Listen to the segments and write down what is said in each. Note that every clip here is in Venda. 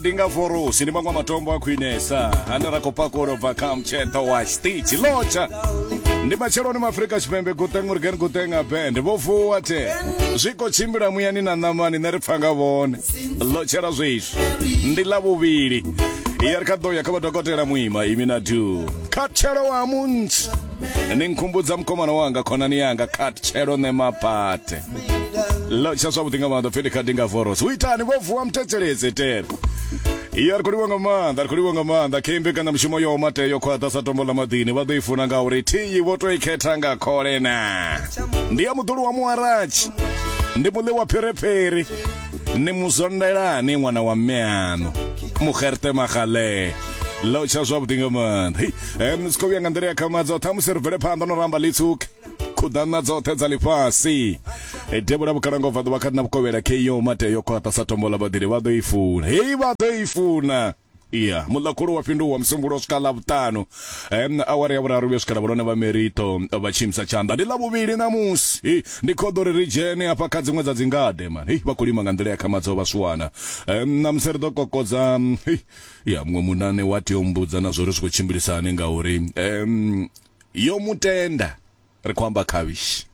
ndi nga vorosi ndi maṅwe matombo a khwinesa ane ra khou pakulo bva kha mtsheṱo wa stitch lotsha ndi matsheloni maafrika tshipembe guteng urgen guteng abend vho vuwa te zwi khou tshimbila muyani na ṋamani nṋe ri pfa nga vhone lotshela zwiswi ndi ḽa vhuvhili ya ri kha ḓo ya kha vhadokotela muima imi na du khathelo wa munthu ni nkhumbudza mukomana wanga khonani yanga khathelo ne mapate lotsha zwavhuḓi nga maanḓa fheli khadi nga voros u itani vho vuwa muthetseledze tele iyo ari khou livha nga maanḓa ari khou livha nga maanḓa khe mbekana mushumo yo mate yo khwaṱha sa tombo ḽa maḓini vha ḓo i funa nga uri thiyi vho to i khetha nga khole na ndi ya muḓulu wa muwaratshi ndi muḽi wa phiriphiri ni muzondelani ṅwana wa mme aṋu muxerte magale lotsha zwavhuḓi nga maanḓa um si khou vhuya nga nḓila ya khamadza ṱhamusi ri bvele phanḓa no ramba litsuke khuḓana dzoṱhe dza ḽifhasi e devhula vhukalanga ubva ḓuvha kha na vhukovhela KO mate yo khwaṱha sa tombo ḽa vhaḓili vha ḓo i funa hei vha ḓo i funa iya muḽakhulu wa fhinduwa musumbulo u swika ḽavhuṱanu um awara ya vhuraru vhuya swika lavhulone vha merito vha tshimisa tshanḓa ndi ḽavhuvhili ṋamusi ndi khoḓo ri ri dzhene hafha kha dziṅwe dza dzingade man hei vha khou lima nga nḓila ya khamadzo vha swana um ṋamusi ri ḓo kokodza ya muṅwe munane wa tea u mbudza na zwo ri zwi khou tshimbilisani ngauri um yo mu tenda ri khou amba khavhishi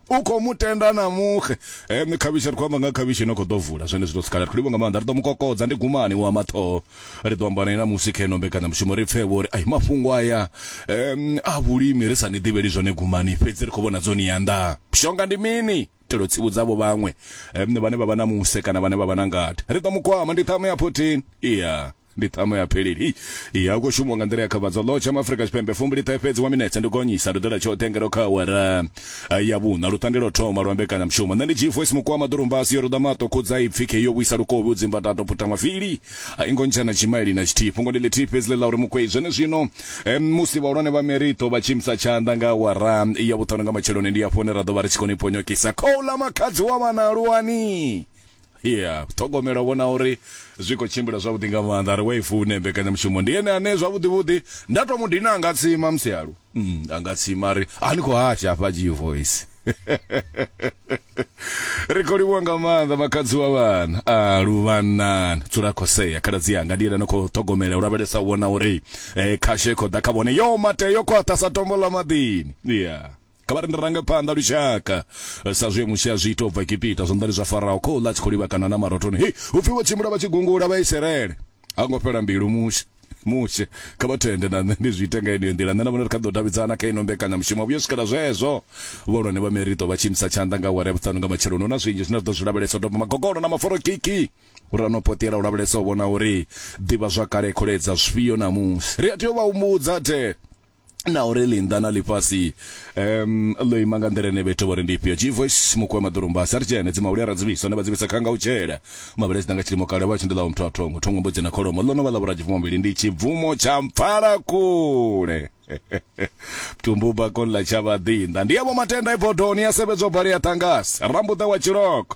u khou mu tenda na muxe um eh, khavhishi ri khou amba nga khavhishi ino khou ḓo vula zwone zwi ḓo sikhala ri khou livho nga maanḓa ri ḓo mu kokodza ndi gumani wa maṱhoho ri ḓo amba naye na musi kha ino mbekanyamushumo ri pfevho uri ai mafhungo aya um a vhulimi ri sa ni ḓivheli zwone gumani fhedzi ri khou vhona dzo ni yanḓa shonga ndi mini itela u tsivhudza avho vhaṅwe vhane vha vha na muse kana vhane vha vha na ngade. Ri ḓo mu kwama. Ndi ṱhama ya 14. Iya. Ndi ṱhama ya pheleli. Hei. Iya, hu khou shumiwa nga nḓila ya khavhadzo. Ḽo tsha Maafrika Tshipembe. Fumbiliṱahe fhedzi wa minetse. Ndi gonyisa. Ri ḓo ita tshoṱhe ngeno kha awara ya vhuṋa, luṱange lwo thoma lwa mbekanyamushumo. Nṋe ndi G-Voice Mukwama, ḓurumbasi yo ruḓa maṱo, khudza ipfi, khei yo vhuisa lukovhi, u dzimba tato, puta mavili. A i ngo ntshena tshimaili na tshithihi. Fhungo ndi ḽithihi fhedzi ḽe ḽa uri Mukwei zwenezwino em, musi vhahulwane vha Merito vha tshi imisa tshanḓa nga awara ya vhuṱanu nga matsheloni, ndi hafho hune ra ḓo vha ri tshi koni ponyokisa khouḽa makhadzi wa vhana aluwani. Ya ṱhogomela u vhona uri zwi khou tshimbila zwavhuḓi nga maanḓa. A ri wa i fune mbekanyamushumo. Ndi ene ane zwavhuḓi-vhuḓi nda tou mu dina a nga tsima musi a lu. Mm, a nga tsima a ri, A ni khou hasha hafha G-Voice? ri khou livhuwa nga maanḓa makhadzi wa vhana a luvhanani dzula khosea khaladzi yanga ndi yena no khou ṱhogomela u lavhelesa u vhona uri eh, khasho i khou ḓa kha vhone yo mate yo khwaṱha sa tombo ḽa maḓini ya kha vha ri ndi range phanḓa lushaka Eh, sa zwe musi a zwi ita u bva egipita zwanḓani zwa farao khou ḽa a tshi khou livhakana na marotoni hei upfi vho tshimbila vha tshi gungula vha iserele Ha ngo fhela mbilu mushe mushe kha vha thende na nṋe ndi zwi ite nga yeneyo nḓila nṋe na vhone ri kha ḓo davhidzana kha ino mbekanyamushumo vhuyo swikela zwezwo vhahulwane vha merito vha tshi imisa tshanḓa nga awara ya vhuṱanu nga matsheloni hu na zwinzhi zwine ri ḓo zwi lavhelesa u doba magogolo na maforokiki uri a no poṱela u lavhelesa u vhona uri ḓivha zwakale kholedza zwifhio ṋamusi ri a tea u vha humbudza the na uri linda na lifhasi um ḽo ima nga nḓila ine vhethu vho ri ndi ifhio jivoice mukuwe maḓurumba sa ri dzhene dzimahuli a ra dzivhisa ne vha dzivhisa khanga u tshela mavhele dzi nga tshilimo kale vha tshi ndi ḽa wa muthu a thongo thongo mbudzi na kholomo ḽo no vha ḽa vhuradzibvumo mbili ndi tshibvumo tsha mpfala kule tumbu bakoni ḽa tshavhaḓinḓa ndi yavho matenda ibodoni ya sevhedzwa bali ya ṱangasi rambuḓa wa tshiloko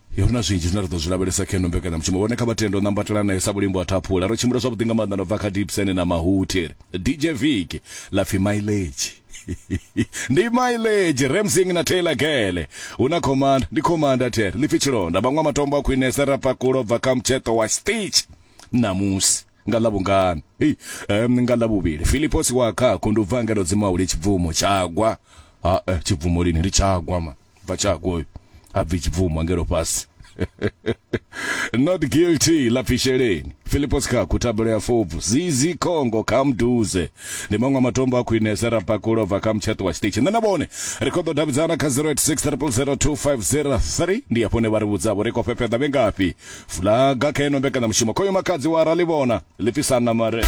Yo ri na zwinzhi zwine ra ḓo zwi lavhelesa kha ino mbekanyamushumo. Vhone kha vha tende u nambatela nae sa vhulimbo ha thaphula. Ro tshimbila zwavhuḓi nga maanḓa na u bva kha Dibsene na Mahuthi. DJ Vic, ḽa pfi Mileage. Ndi Mileage, Ramsing na Taylor Gele. Hu na Commander, ndi Commander there, ḽi pfi Tshilonda. Vhaṅwa matombo a khwinesa ra pakula u bva kha mutsheṱo wa Stitch. Ṋamusi, nga Ḽavhungana, hei, em, nga Ḽavhuvhili, Filiposi wa Khakhu ndi u bva ngeno dzimu a hule Tshibvumo, Tshagwa. Ha-e, Tshibvumo lini? Ndi Tshagwa, man. bva tshako uyu ha bvi tshibvumwa ngelo fhasi not guilty la fisheleni filipo sikhaku thabelo ya fobvu zizi khongo kha mduze ndi maṅwe matombo a khwinese ra pakulo bva kha mutsheṱo wa tshiṱitshi nṋe na vhone ri khou ḓo davhidzana kha 0860002503 ndi hafho ne vha ri vhudzavho ri khou fhefheḓa vhe ngafhi fulaga kha ino mbekanyamushumo khoyo makadzi wa ra ḽi vhona ḽi fhisana mare